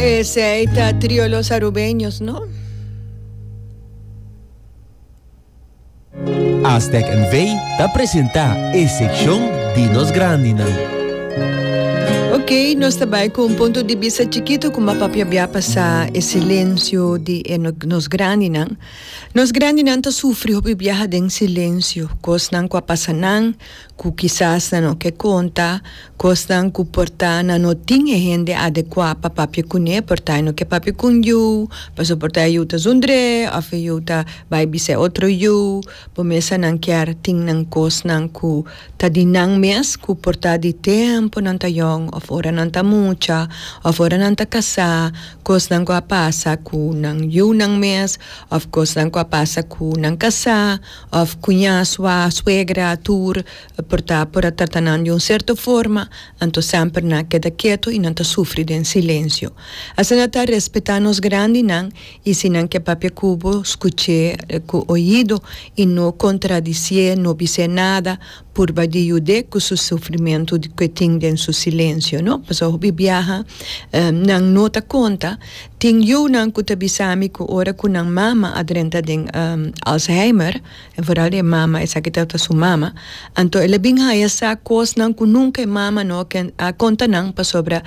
Esei ta trio los Arubeños no. Aztec NV ta presenta e seccion di nos grandinan. Ok, nos ta bai cu un punto di vista chiquito cu ma papia bia pasa e silencio di e no, nos grandinan. Nos grandinan ta sufri hopi biaha den silencio, cosnan cu a pasa nan, ku kisas nan no ke konta kosnan ku por ta nan no tin e hende adekua pa papia kuné, por ta e no ke papia kun yu, pasobra por ta e yu ta zundr'é òf e yu ta bai bisa e otro yu. Bo mesa nan kier tin nan kosnan ku ta di nan mes ku por ta di tempu nan ta yòn òf ora nan ta mucha òf ora nan ta kasá, kosnan ku a pasa ku nan yunan mes òf kosnan ku a pasa ku nan kasá. Of kuña, sua, suegra, tur, por ta por a trata nan di un serto forma, anto semper nan a keda keto i nan ta sufri den silensio. Asina ta respetá nos grandinan i si nan ke papia ku bo, skuch'é ku oido i no kontradisié, no bis'é nada, Purba di yud'é ku su sufrimentu ku e tin den su silensio, no. Pasobra hopi biaha nan no ta konta. Tin yunan ku ta bisa mi ku ora ku nan mama a drenta den Alzheimer, en vooral e mama esaki ta ta su mama, anto el a bin haya sa kosnan ku nunka e mama no a konta nan pasobra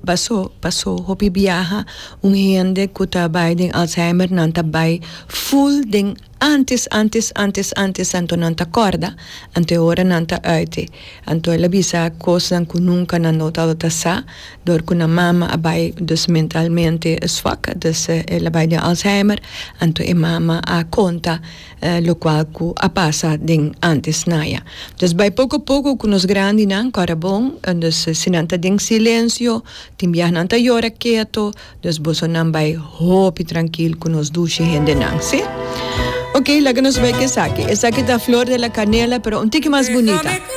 pasó pasó hopi biaha un hende ku ta bai den Alzheimer nan ta bai ful den Antes, antes, antes, antes, anto nan ta kòrda, anto e ora nan ta ùitte, anto el a bisa kosnan ku nunka nan no tabata sa, dor ku nan mama a bai dus mentalmente swak, dus el a bai den Alzheimer, anto e mama a konta lokual ku a pasa den antes naja. Dus bai poko poko ku nos grandinan, kòrda bon, dus si nan ta den silensio, tin biaha nan ta yora keto, Nos bosonan bai hopi trankil ku nos dushi hendenan, si? Oke, laga nos bai ku esaki. Esaki ta flor de la kanela, pero un tiki mas bunita.